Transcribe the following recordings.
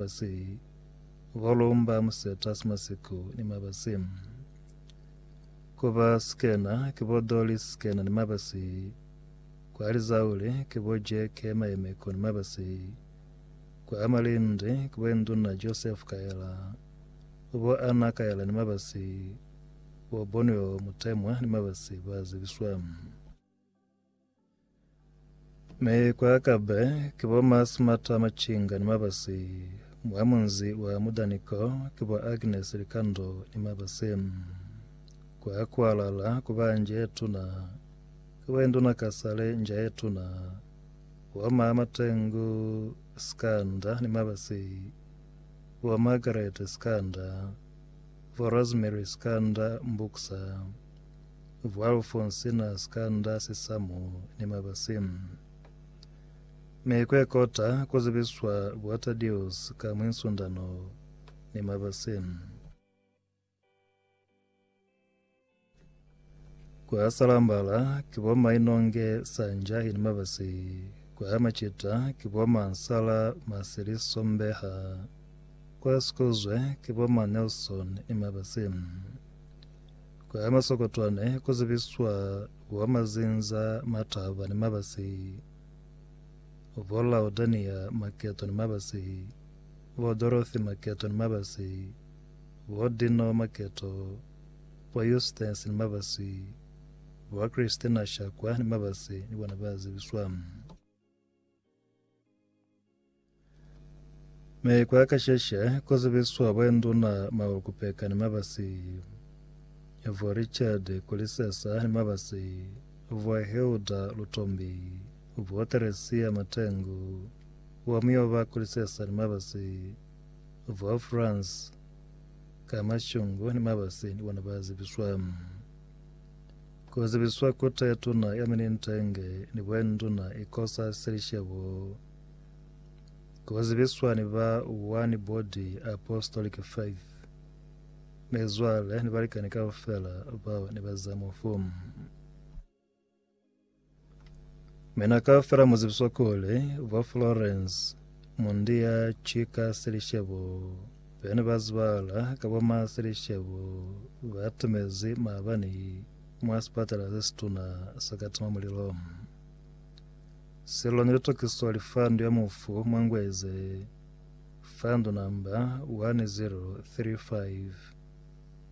Mabasi, Golumba, Museta, Simasiku ni Mabasi. Kuba Sikena, ki bo Doli Sikena ni Mabasi. Kwa Lizauli, ki bo Jeke Mayemeko ni Mabasi. Kwa Amalindi, ki bo Induna Joseph Kaela, ku bo Anna Kaela ni Mabasi, bo Bonweo Mutemwa ni Mabasi ba zibiswa. Mi ku akabe ki bo Masimata Machinga ni Mabasi, mwa munzi wa Mudani ko, ki bo Agnes Likando ni Mabasi. Kwa Kualala ku ba nja ye tuna, ki bo Induna Kasale nja ye tuna, bo ma Matengu Sikanda ni Mabasi, bo Margaret Sikanda, bo Rosemary Sikanda Mbuksa. Vualfu nsina sikanda sisamu ni mabasi. Mi kwe kota ku zibiswa bua Tadius ka mwi nsundano ni mabasi. Kwa Salambala ki bo Mainonge Sanjahi ni mabasi. Kwa Macita ki bo Mansala Masili Sombeha. Kwa Sikozwe ki bo Ma Nelson ni mabasi. Kwa masokotwane ku zibiswa kwa mazinza mataba ni mabasi, bo Laudania Maketo ni mabasi, bo Dorothy Maketo ni mabasi, bo Dino Maketo, bo Eustace ni mabasi, bo Christina Shakwa ni mabasi ni bona ba zibiswa. Me kwa kasheshe kozibiswa bwenduna mawe kupeka ni mabasi vwa Richard Kulisesa ni mabasi vwa Hilda Lutombi vwa Teresia Matengu wa Muyoba Kulisesa ni mabasi vwa France Kamashungu ni mabasi ni bona bazibiswa Ku zibiswa Kota ya Tuna ya Minintenge ni Buenduna Ikosa Selishebo Ku zibiswa ni ba One Body Apostolic Faith Mizwale ni balikani kaufela bao ni ba za mufu. Mina kaufela mu zibiswa kuli bo Florence Mundiya ki ka Selishebo bene ba zibala ka bo ma Selishebo ba tumezi maabani mwa sipatala se situna sa ka tima mulilo. Sello ne li tokiswa lifandu ya mufu mwa Ngweze, fandu namba 1035.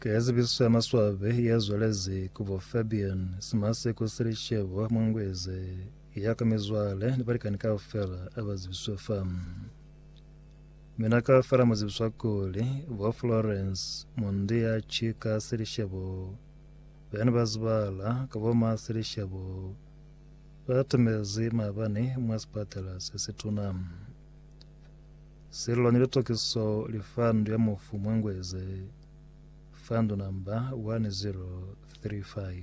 Ka zibiso ya maswabi ya zwalezi kubo Fabian Simaseko Selishebo Mungweze ya ka mizwale ni balikani kaufela aba zibiswe fa mina kaufela muzibiswa kuli bo Florence Mundi ya Chika Selishebo bene bazibala ka boma Selishebo batumezi mabani mwa sipatala sesituna Sello ni litokiso li fa ndu ya mufu mwa Ngweze fa ndu namba 1035.